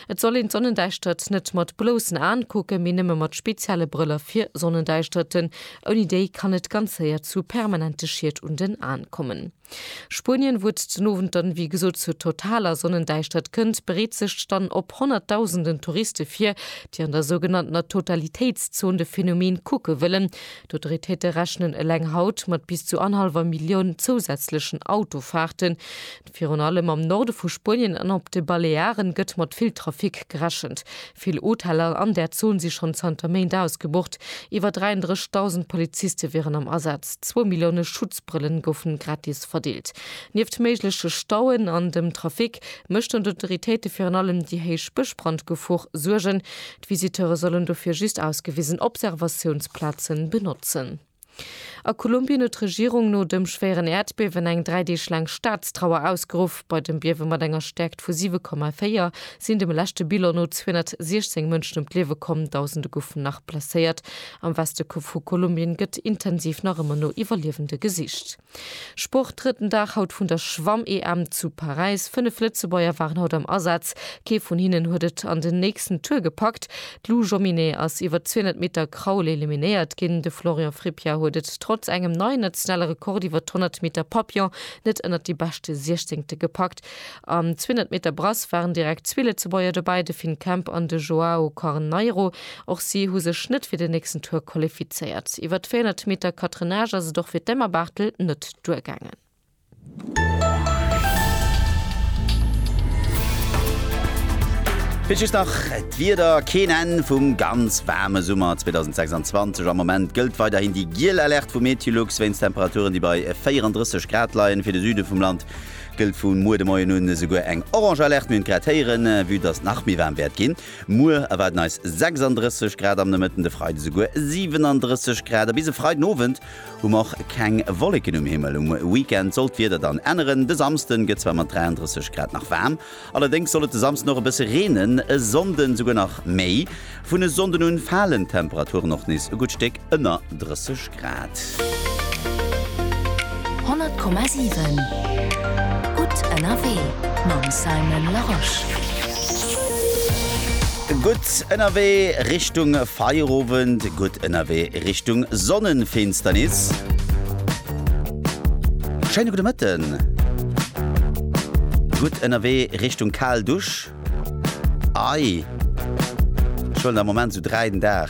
Et soll een d'Sonnendäischtert net mat bloussen Aen kucken, mee nëmme mat spezielle Brëller fir Sonnendäischterten. Ouni déi kann et ganz séier zu permanente Schied un den Aen kommen. Spuenien, wou et den Owend dann wéi gesot zur totaler Sonnendäischtert kënnt, bereet sech dann op honnertdausenden Touriste vir, déi an der sougenanntener Totalitéitszon de Phänomen kucke wëllen. D'Autoritéite rechnen eleng haut mat bis zu anhallwer Millioun zousätzlechen Autofaarten. Virun allem am Norde vu Spuenien an op de Balearen gëtt mat vill Trafic gerechent. Vill Hoteller an där Zon si schonn zanter Méint ausgebucht. Iwwer 33.000 Poliziste wieren am Asaz. Zwou Millioune Schutzbrëllen goufen gratis verdeelt. Nieft méigleche Stauen an dem Trafic méchten d'Autoritéite virun allem déi héich Bëschbrandgefor Suergen. D'Visiteure sollen dofir just ausgewisen Observatiounsplazen benotzen. A Kolumbien huet d'Regierung no dem schwéieren Äerdbiewen eng dräi Deeg laang Staatstrauer ausgeruff. Bei dem Biewe mat enger Stäerkt vu 7,4 sinn dem leschte Bilan no 216 Mënschen ëm d'Liewe komm, Dausende goufen nach blesséiert. Am Weste vu Kolumbien gëtt intensiv nach ëmmer no Iwwerliewende gesicht. Sport, Drëtten Dag haut vun der Schwamm-EM zu Paräis. Fënnef Lëtzebuerger waren haut am Asaz. Kee vun hinnen huet et an den nächsten Tour gepackt. D'Lou Jomminet ass iwwer d'Zwiehonnert Meter Kraul eliminéiert ginn. De Florian Frippier huet et trotz engem neien nationale Rekord iwwer d'Honnert Meter Papillon net ënnert déi beschte Siechzéngte gepackt. Sekt. Am 200 Meter Brass waren direkt zwee Lëtzebuerger dobäi, de Finn Kemp an de Joao Corneiro. Och si hu sech net fir den nächsten Tour qualifizéiert. Iwwer d'400 Meter Catenage ass et och fir d'Emma Barthel net duergaangen. Fir just nach d'Wieder, Keen Enn vum ganz waarme Summer 2026. Am Moment gëllt weiderhin déi giel Alerte vu MeteoLux wéinst Temperaturen, déi bei 34 Grad leien. Fir de Süde vum Land gëllt vu muer de Moien un esouguer eng orange Alerte. Mir hunn et grad héieren, vue dass et nach méi waarm wäert ginn. Muer erwaarden eis 36 Grad am Nomëtten, de Freide souguer 37 Grad. A bis e Freiden Owend hu mer och keng Wolleken um Himmel. Um Weekend soll d'Wieder dann änneren. De Samsden gëtt zwar mat 33 Grad nach waarm, Allerdéngs soll et de Samsden och e bësse reenen, e Sonnden souguer nach méi. Vun e Sonnden un falen d'Temperaturen och nees e gutt Stéck ënner 30 Grad. 100,7 Gutt ënnerwee mam Simon Larosche. Gutt ënnerwee Richtung Feierowend, gutt ënnerwee Richtung Sonnenfinsternis. Schéine gudde Mëtten. Gutt ënnerwee Richtung kal Dusch? Ei, ech huelen am Moment sou 3 den Dag.